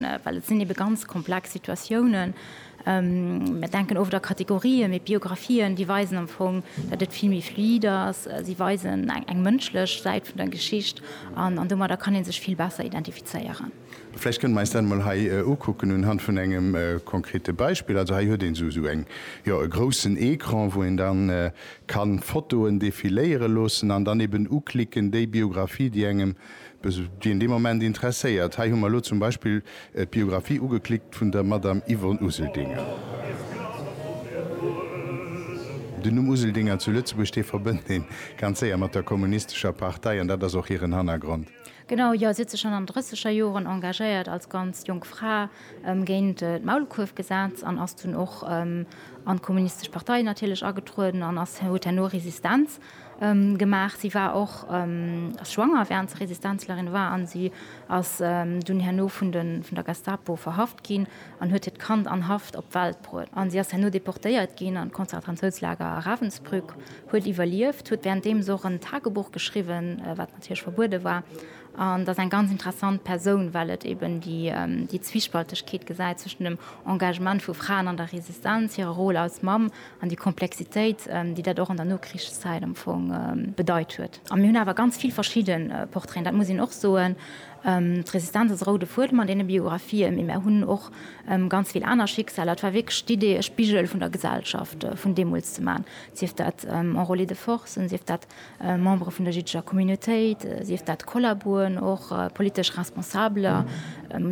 Well et sinn ebe ganz komplex Situatiounen. Mir denken oft a Kategorien, mee d'Biographien, déi weisen am Fong, datt et vill méi fluide ass. Si weisen eng mënschlech Säit vun der Geschicht an domadder kann ee sech vill besser identifizéieren. Vläicht kënne mer eis dat emol hei ukucken unhand vun engem konkrete Beispill. Also hei huet een esou eng, jo, e groussen Ecran, wou een da ka Fotoen defiléiere loossen an dann eben uklicken, déi Biographie, déi engem Dës ginn dee Moment interesséiert. Hei hu mer elo zum Beispill d'Biographie ugeklickt vun der Madame Yvonne Useldinger. Den Numm Useldinger zu Lëtzebuerg, dee verbënnt ee ganz séier mat der kommunistescher Partei an dat ass och hiren Hannergrond. Genau, jo. Si huet sech schonn an drësseger Joren engagéiert, als ganz jonk Fra, géint d'Maulkuerfgesetz an ass dunn och an d'kommunistesch Partei natierlech agetrueden an ass huet herno Resistenz gemaach. Si war och schwanger während se Resistenzlerin war an si ass dunn herno vun der Gestapo verhaft ginn an huet hiert Kand an Haft op d'Welt bruet. An si ass herno deportéiert ginn an d'Konzertranzoutslager Ravensbrück, huet iwwerlieft, huet währenddeems och en Tagebuch geschriwwen, wat natierlech verbuede war, an ass eng ganz interessant Persoun, well et eben déi Zwispaltegkeet gesäit zwëschen dem Engagement vu Fraen an der Resistenz, hirer Rôle als Mamm An déi Komplexitéit, déi dat och an der Nokrichszäit am Fong bedeit huet. A mir hunn awer ganz vill verschidde Portraiten, dat muss een och soen. D'Resistenz ass e roude Fuedem an deene Biografië, mee mir hunn och ganz vill aner Schicksaler. Et war wierklech d'Idee, e Spigel vun der Gesellschaft vun deemools ze maachen, sief dat Enrôlés de force, sief dat Membere vun der jiddescher Communautéit, sief dat Kollaboen, och politesch Responsabeler,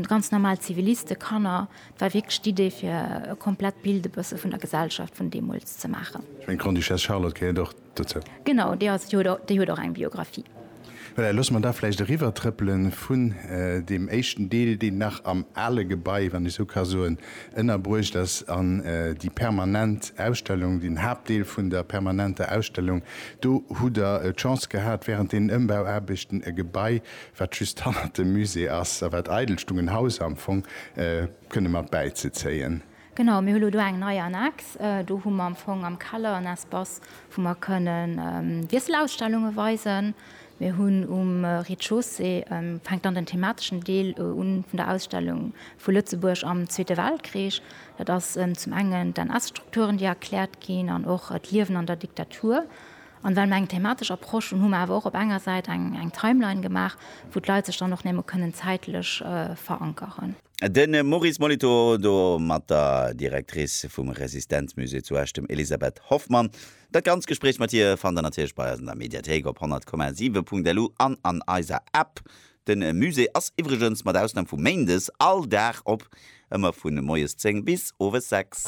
ganz normal Ziviliste, Kanner. Et war wierklech d'Idee, fir e komplett Bild e bësse vun der Gesellschaft vun deemools ze maachen. Ech mengen, d'Grande-Duchesse Charlotte gehéiert och dozou. Genau, déi ass, déi huet och eng Biographie. Voilà, loosse mer da vläicht eriwwertrëppele vun deem éischten Deel, deen nach am ale Gebai, wann ech esou ka soen, ënnerbruecht ass, an déi permanent Ausstellung, den Haaptdeel vun der permanenter Ausstellung. Do hutt Der d'Chance gehat, während deenen Ëmbauaarbechten e Gebai wat just hannert dem Musée ass a wat eidel stung, en Haus am Fong kënne mat bäizezéien. Genau, mir hu lo do eng nei Annex. Do hu mer am Fong am Keller en Espace, wou mer kënnen Wiesselausstellunge weisen. Mir hunn um Rez-de-chaussée, fänkt dann den themateschen Deel un vun der Ausstellung, vu Lëtzebuerg am Zweete Weltkrich. Dat ass zum engen d'NS-Strukturen, déi erkläert ginn an och d'Liewen an der Diktatur. An well mer eng thematesch Approche hunn, hu mer awer och op enger Säit eng Timeline gemaach, wou d'Leit sech dann och némme kënnen zäitlech verankeren. De Maurice Molitor do mat der Directrice vum Resistenzmusée zu Esch, dem Elisabeth Hoffmann. Dat ganzt Gespréich mat hir fannt der natierlech bei eis an der Mediathéik op 100,7.lu an an eiser App. De Musée ass iwwregens, mat Ausnam vu méindes, all Dag op, ëmmer vu moies 10 bis owes 6.